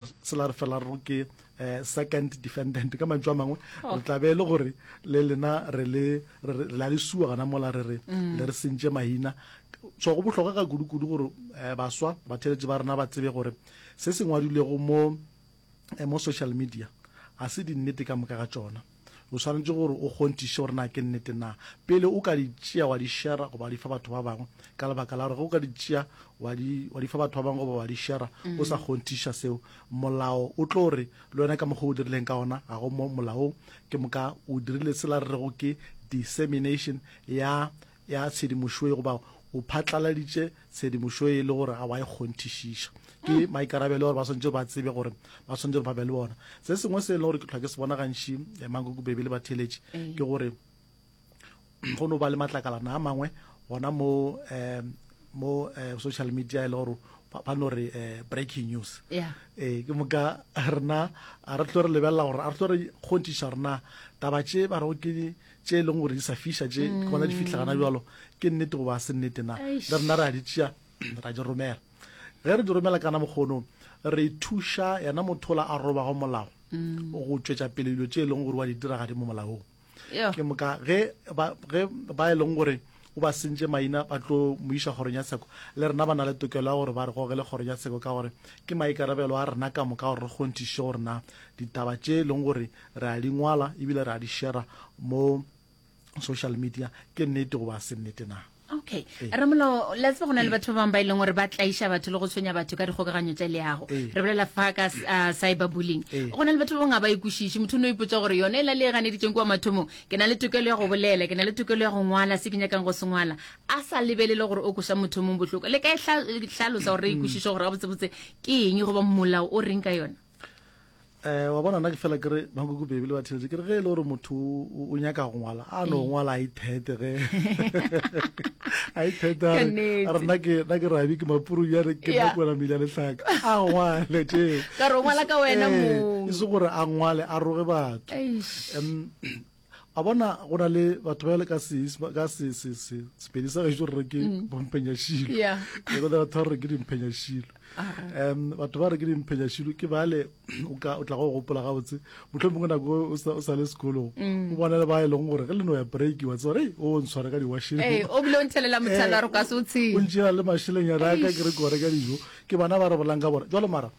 se la re fela re ke eh, second defendant ka mantšu a mangwe oh. re tla be e le gore le lena re la le sua gana mola re re mm. le re sentše mahina so go bohlokwa ka kudu-kudu gore eh, baswa batheletši ba rena ba tsebe gore se se ngwadilego mo eh, mo social media a se dinnete ka moka ga tsona O swanetše gore o kgonthiše gore na ke nnete na pele o ka di tšea wa di šera goba wa di fa batho ba bangwe, ka lebaka la gore ge o ka di tšea wa di, wa di fa batho ba bangwe goba wa di šera o sa kgonthiša seo, molao o tlo re, Le wena ka mokgwa o dirileng ka ona ga go mo molaong, ke moka o dirile sela re rego ke dissemination ya ya tshedimošoye goba o phatlaladitše tshedimošoye e le gore ga wa e kgonthišiša. Ke maikarabelo gore ba swanetše ba tsebe gore ba swanetše gore ba be le bona. Se sengwe se e leng gore ke tlhwa ke se bona gantši eh, mankoko bebe le batheletši eh. ke gore go no ba le matlakalana a mangwe gona mo um mo eh, social media e le gore ba no re eh, breaking news yeah. eh, ke moka rena a re tlo re lebelela gore a re tlo re kgonthiša rena taba tše ba rego ke tše e leng gore di sa fiša tše ke gona di fitlha gana bjalo ke nnete goba a se nnete na le rena re a di tšea ra di romela ge re di romela kana mokgono re thuša yena mothola a robago molago go tšwetša pele dilo tše e leng gore wa di dira gadi mo molaong ke moka ge ba e leng gore O ba sentše maina ba tlo mo iša kgorong ya tsheko. Le rena ba na le tokelo ya gore ba re gogele kgorong ya tsheko ka gore ke maikarabelo a rena ka moka gore re kgonthiše gore na ditaba tše e leng gore re a di ngwala ebile re a di shera mo social media ke nnete goba a se nnete na. Okay. Ee. Ramolao, la tseba go na le batho ba bangwe ba e leng gore ba tlaiša batho le go tshwenya batho ka dikgokaganyo tša leago. Ee. Re bolela fa ka s- ah, cyberbullying. Ee. Go na le batho ba bangwe ga ba e kwešiše. Motho o ne o ipotsa gore yone e la le e ganeditšeng kwa mathomong ke na le tokelo ya go bolela ke na le tokelo ya go ngwala se ke nyakang go se ngwala a sa lebelele gore o koša motho mong bohloko le ka e hlalosa gore re ikwešiše gore gabotsebotse ke eng goba molao o reng ka yona eh wa bona na ke fela kere ba go gubebe le batheletse kere ge e le gore motho o nyaka go ngwala a no mm. ngwala i thete ge i thete a re na ke na ke rabi ke mapuru ya re ke na kwela mila le tlhaka a ngwale tse ka re ngwala ka wena eh, mo e se gore a ngwale a roge batho Em, a bona go na le batho ba le ka se ka se se se sepedi sa gaešo re ke mm. bomphenyashilo yeah. le go batho ba re ke dimphenyashilo um batho ba re ke dimphenyashilo ke bale o ka o tla go gopola ga botse motlho mongwe nako o sa o sa le sekolong mm. o bona le ba e leng gore ge le no ya break wa tsore o ntshware ka diwasheng eh o bile o ntshelela motlhala re ka se o tshile o ntshela le masheleng ya raka ke re gore ka dijo ke bana ba re bolang ka bora jalo mara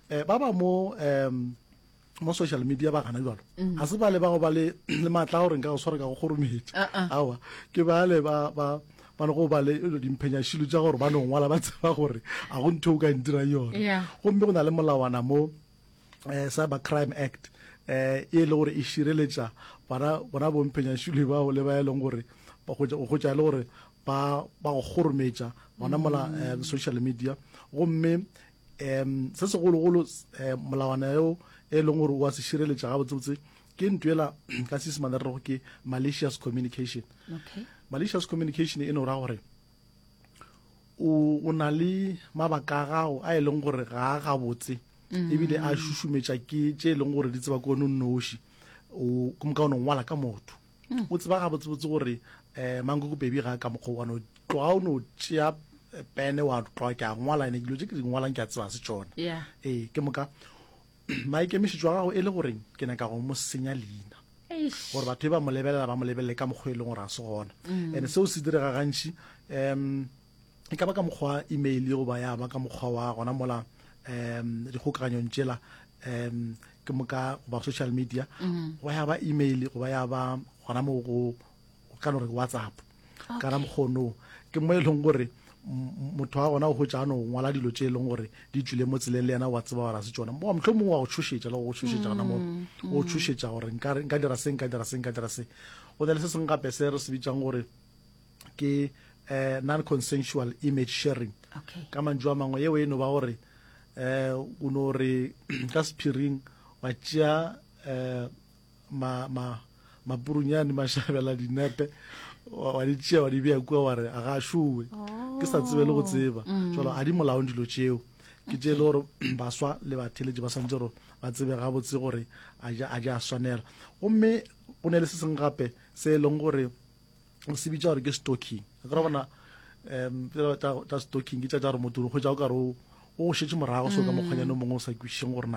eh ba ba mo um mo social media ba gana jalo mm. a se ba le ba go ba le le matla gore nka go swara ka go kgorometša ah, ah. awa ke ba le ba ba ba go ba le dimphenyashilo tša gore ba no ngwala ba tseba gore a go ntho o ka ntira yone gomme go na le molawana mo eh, cyber crime act um e le gore e šireletša bona bomphenyashilo bao le ba e leng gore go gotša e le gore ba go kgorometša gona mola eh, social media gomme um se segologolo um molawana yo e leng gore o a se šireletša ga botsebotse ke ntwela ka seesemane re rego ke malicious communication okay. malicious communication e no ra gore o na le mabaka a gago a e leng gore ga a gabotse mm. ebile a šušumetša ke tše e leng gore di tseba ko nonnoši o ka o nongwala ka motho o tseba gabotsebotse gore um eh, mankokopedi ga ka mokgwa one tloga o no tšea eh, pene wa tloga ke a ngwala ene dilo tse ke di ngwalang ke a tseba se tsone yeah. ee ke moka maikemišetšo a gago e le goreng ke nyaka go mo senya leina gore batho e ba mo lebelela ba mo lebelele ka mokgwa e leng gore a se gona mm. and seo se direga gantšhi um e ka ba ka mokgwa wa email yo goba ya ba ka mokgwa wa gona mola um dikgokaganyong tšela um ke moka goba social media mm-hmm. goba ya ba email goba ya ba gona mo go ka no re whatsapp kana mokgono ke mo e leng gore motho wa gona o gotsa no ngwala dilo tse e leng gore di tswile mo tseleng le yena wa tseba gore a se tsona mo motlho mongwe wa go tshošetsa le go tshošetsa gona moo mm, mm. o tshošetsa gore nka dira se nka dira se nka dira se go na le se sengwe gape se re se bitsang gore ke eh, non-consensual image sharing okay. ka mantšu a mangwe yeo e no ba gore eh, o no re ka sephiring wa tšea eh, ma, ma, mapurunyane mašabela dinepe wa di tšea wa di bea kua wa re a ga šowe ke sa tsebe le go tseba mm. jalo a di molaong dilo tšeo ke tše e le gore baswa le batheletše ba swantse gore ba tsebe gabotse gore a ja a swanela gomme go ne le se seng gape se e leng gore o se bitša gore ke stocking ka re bona um tsa stocking ke tša tša gore motho o kgwetsa o kare o go šetse morago so ka mokgwanyane o mongwe o sa kwišišeng gore na